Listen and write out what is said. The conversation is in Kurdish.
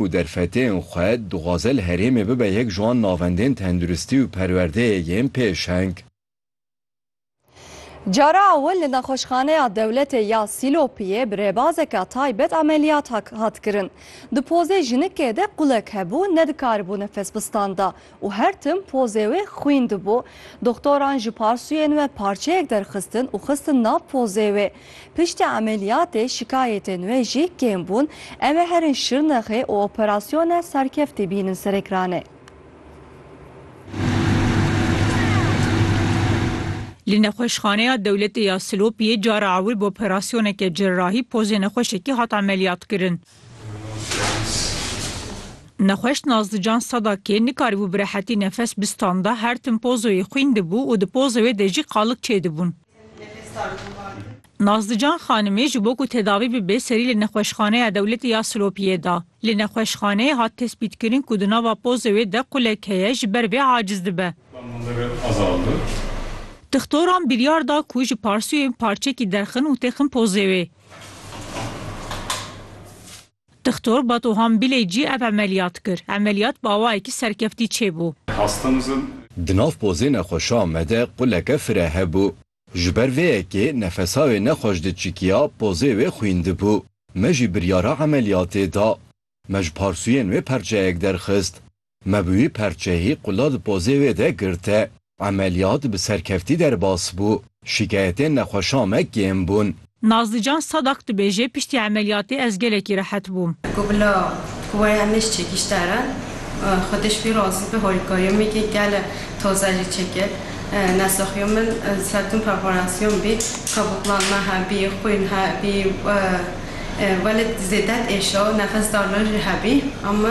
û derfetên xwe dixwaze li herêmê bibe yek ji wan navendên tenduristî û perwerdeyê yên pêşeng. Cara ewil li Nexweşxaneya Dewletê ya Sîlopiyê bi rêbazeke taybet ameliyat hat kirin. Di pozê jinikê de qulek hebû, nedikaribû nefes bistanda û her tim pozê wê xwîn dibû. Doxtoran ji parsûyên we parçeyek derxistin û xistin nav pozê wê. Piştî emeliyatê şikayetên wê jî kêm bûn. Ew ê herin Şirnexê û operasyone serkeftî bînin Serêkranê. Li Nexweşxaneya Dewletê ya Silopiyê cara ew ê bi operasyoneke cerrahî pozê nexweşekê hat emeliyatkirin. Nexweş Nazlican Sadakê nikarîbû bi rehetî nefes bistanda, her tim pozoyê xwîn dibû û di pozoyê de jî qalig çêdibûn. Nazlican xanimê ji bo ku tedawî bibe serî li Nexweşxaneya Dewletê ya Silopiyê da. Li nexweşxaneyê hat tespîtkirin ku di nava pozoyê de qulek heye ji ber vê aciz dibe. Dixtoran biryar da ku ji parsûyên parçekî derxin û têxin pozê wê. Dixtor Bato Hambilê cî ev emeliyat kir. Emeliyat bi awayekî serkeftî çêbû. Di nav pozê nexweşa me de quleke fire hebû. Ji ber vê yekê nefesa wê nexweş diçikiya, pozê wê xwîn dibû. Me jî biryara emeliyatê da. Me ji parsûyên wê perçeyek derxist. Me bi wî perçeyî qula di pozê wê de girte. Emeliyat bi serkeftî derbas bû. Şîkayetên nexweşa me kêm bûn. Nazlican Sadak dibêje, Piştî emeliyatê ez gelekî rehet bûm. Ku bila ku we ya nişt çekîş der e, xwediş wî razî be holîkariya me kir, gele toze jî çekir. Nesaxiya min serdum perforasyon bî, kabûklan me hebî, xwîn hebî, welêt zêde diêşa, nefesdarina jî hebî.